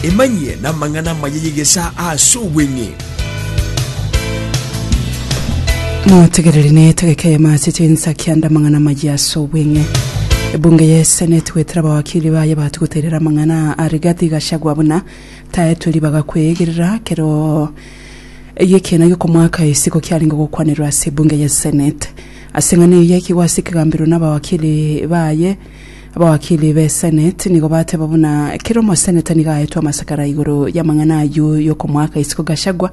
Emanyie namang'ana amaya y'egesaa ase obweng'e. Motegereri na etegeka ya mache chinsa kianda amang'ana amaya ase obweng'e. Ebunge ya eseneti gwetera abawakiri baye bati goterera amang'ana a Rigathi Gachagua buna taetwe ribaga kweegerera kero eye ekiina gi'okomoaka isiko kiarenge gokwanerwa ase ebunge ya eseneti. Ase eng'ana eye ekigwasi kigambirwe na abawakiri baye Abawakili b'Eseneti nigo bateba buna kera omoseneta nigo aetwe amasakara igoro y'amang'ana ayio y'okomoaka isiko Gachagua,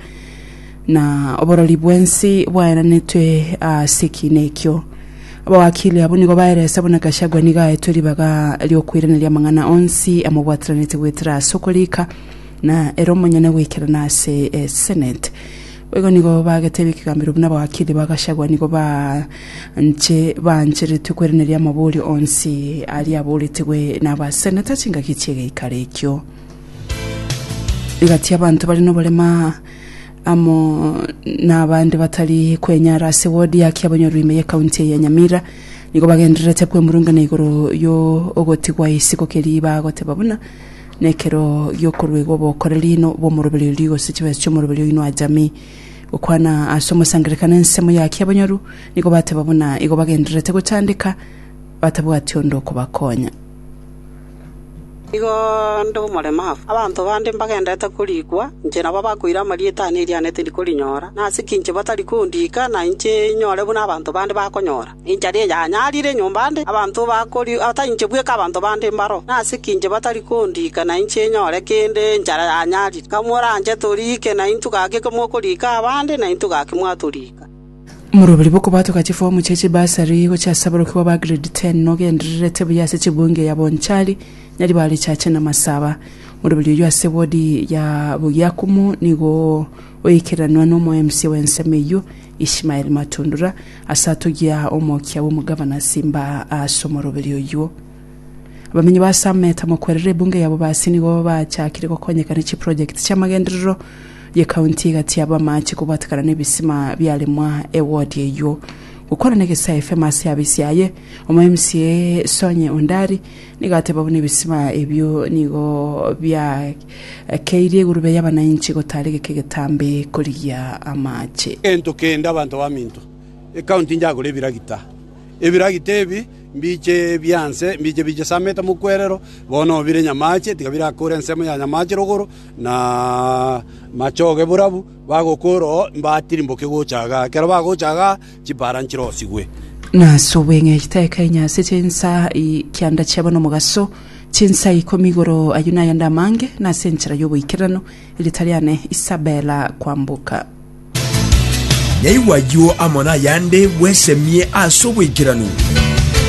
na oborori bw'ensi bwaeranetwe ase ekiina ekio. Abawakili abwo nigo baeresa buna Gachagua nigo aetwe ribaga ri'okoiraneria amang'ana onsi amobwataranete goetera ase okorika, na ere omonyene goikerana ase Eseneti. Boigo nigo bagetebia ekegambero buna abagakili ba Gachagua nigo banche baancheretwe kweraneria amaborio onsi aria aboretigwe nabaseneta chingaki chi'egeikaro ekio. Rigati abanto bare noborema amo nabande batari kwenyara ase wodi ya Kiabonyoru ime ye county eye ya Nyamira nigo bagendererete kwemurungana igoro yo ogotigwa isiko keria bagoteba buna Na ekero giokoruegwa obokoreri na obw'omoroberi oria, gose chibesa chi'omoroberi oino achami, gokwana ase omosangererekano na ensemo y'aki abanyaru, nigo bateba buna igo bagendererete gochandeka, batabwati onde okobakonya. Nigo nde omoremafu, abanto bande mbagendererete korikwa, inche nabo bakoira amarieta aane eria aane tindi korinyora, nase ki inche batari kondika, na inche inyore buna abanto bande bakonyora? Ninche aria yanyarire enyomba ande, abanto batainche bweka abanto bande mbaro, nase ki inche batari kondika na inche nyore kende enchara yanyarire? Kamoranche toriike, naintwe gaki kamokoriika abande, naintwe gaki mwatoriika. Omoroberi bw'okobatoka chifomu chie chibasari gochia ase aborokigwa ba Grade Ten nogendererete buya ase chibunge ya Bonchari, Nyaribari, Chache na Masaba. Omoroberi oyio ase wodi ya Bugiakumu nigo oikeranwa n'omo-mca w'ensemo eyio, Ishmael Matundura, Ase atogia omokia bw'omogavana ase imba ase omoroberio oyio. Abamenyi ba Sameta mokwerere ebunge yabo basi nigo bachakire gokonyeka ne chiprojekiti chi'amagenderero ye county egati aba amache kobwatekana n'ebisima biaremwa ewodi eyio. Gokwana negesa FM ase abisi aye, omo MCA Sonye Ondari nigo ateba buna ebisima ebio nigo bia Keirie egurube y'abanainchi gotari geke getambe korigia amache. Gento kende abanto baminto ekaunti inchagore ebiragita. Ebiragita ebi mbiche bianse, mbiche bichesamete mokwerero, bono bire nyamache, tiga birakore ensemo ya nyamache rogoro, na machoge borabu, bagokora oo, mbatirimboke gocha igaa. Ekero bagocha igaa. Chipaara nchirosigwe. Nase obweng'egete aye kainyase chinsa i kianda chiabo nomogaso, chinsa ikomi igoro ayio nayande amange, nase enchera y'oboikererano erieta riane Isabela kwamboka. Naigwe ayio amo nayande bwesemie ase oboikeranu.